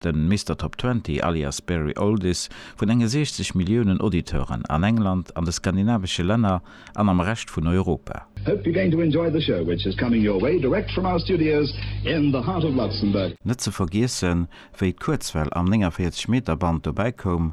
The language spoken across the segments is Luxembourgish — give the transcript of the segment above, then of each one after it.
Den Mister Top Twenty, alias Barry Oldies, vun enge 60 Milliounen Auditeuren an England, an de skandinavesche Länner an am Rescht vun Europa. Hope you're going to enjoy the show which is coming your way direct from our studios in the heart of Luxembourg. Net ze vergiessen, wéi d'Kuerzwell am 49 Meter Band dobäi koum,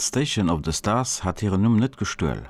D'Station of the Stars hat hiren Numm net gestuel.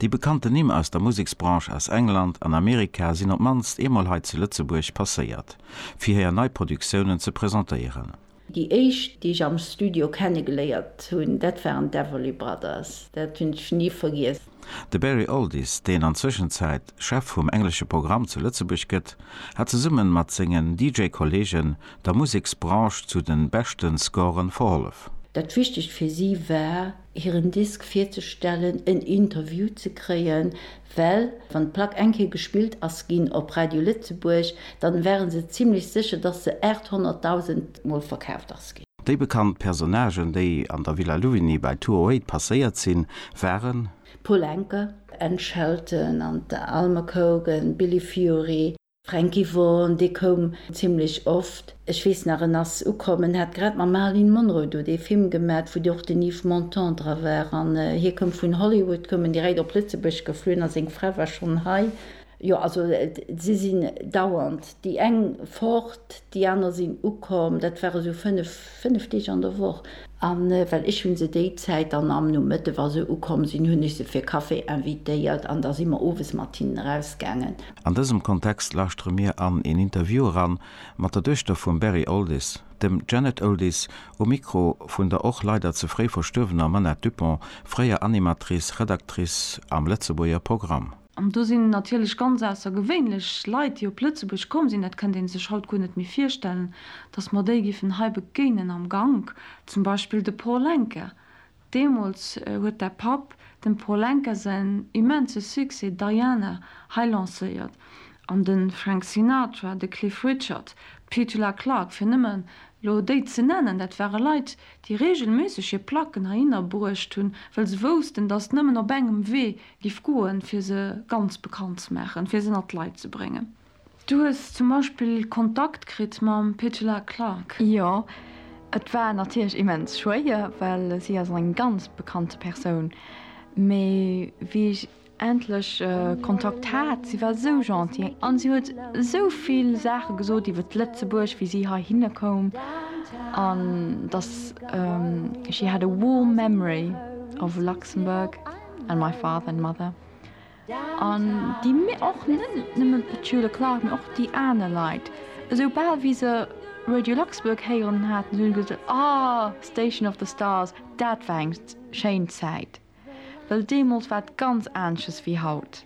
Déi bekannten Nimm aus der Museksbranche aus England an Amerika sinn op d'mannst eemol hei zu Lëtzebuerg passéiert, fir hir nei Produktiounen ze presentéieren. Déi éischt, déi ech am Studio kennegeléiert hunn, dat waren d'Everly Brothers. Dat hunn ech ni vergiess. De Barry Alldis, deen an Zwëschenzäit Chef vum englesche Programm zu Lëtzebuerg gëtt, hat zesumme mat sengen DJ-Kolleegen der Museksbranche zu de beschte Scoren verhollef. Dat Wichtegst fir si war, hiren Disk virzestellen, en Interview ze kréien, well wann d'Plack eng Kéier gespillt ass ginn op Radio Lëtzebuerg, dann ware se zimmlech sécher, dass se 800.000 Mol verkaaft ass ginn. Déi bekannt Personnagen, déi an der Villa Louvigny bei Tour Eight passéiert sinn, waren. Paul Anka, Anne Shelton an d'Alma Cogan, Billy Fury, Frankie Vaughan, dee koum zimlech oft, ech weess nach en ass ukomm, en hat grad mam Marilyn Monroe do dee Film gemat, wou och den Yves Montand dra war, an hie koum vun Hollywood, koum en direkt op Lëtzebuerg geflunn a seng Fra war schonn hei. Jo, also si sinn dauernd déi eng fort, déi aner sinn ukomm. Dat ware sou fënnef, fënnef Deeg an der Woch. A well ech hu se déi Zäit dann am Nomëtte, wa se ukomm sinn, hunn ech se fir Café invitéiert an da si mer owes mat hinnen erausgaangen. An dësem Kontext lauschtere mir an een Interview eran mat der Duechter vum Barry Oldies, dem Janet Oldies, um Mikro vun der och leider ze fréi verstuerwener Manette Dupont, fréier Animatrice, Redactrice am Lëtzebuerger Programm. An do sinn natierlech ganz aussergewéinlech Leit, déi op Lëtzebuerg komm sinn, dat kënnt ee sech haut guer net méi virstellen, datt mer déi géifen hei begéinen am Gank. Zum Beispill de Paul Anka. Deemools huet däi Papp dem Paul Anka säin immense Succès Diana hei lancéiert. An de Frank Sinatra, de Cliff Richard, d'Petula Clark, fir nëmme lo déi ze nennen, dat ware Leit, déi reegelméisseg hir Placken heihinner bruecht hunn, well se woussten, datt nëmmen op engem Wee Giff goen fir se ganz bekannt ze maachen, fir se ënnert d'Leit ze bréngen. Du hues zum Beispill Kontakt kritt mam Petula Clark? Jo, et war natierlech immens schwéier, well si ass eng ganz bekannte Persoun. Mee wéi ech endlech Kontakt hat, si war esou gentil an si huet esou vill Saache gesot iwwert Lëtzebuerg, wéi si heihinne koum an dass she had a warm memory of Luxembourg. and my father and mother an déi mir och net nëmmen d'Schüler Clark mir och déi aner Leit esou bal wéi se Radio Luxembourg héieren haten hunn gesot ah Station of the Stars dat war eng schéin Zäit well deemools war et ganz anesches wéi haut.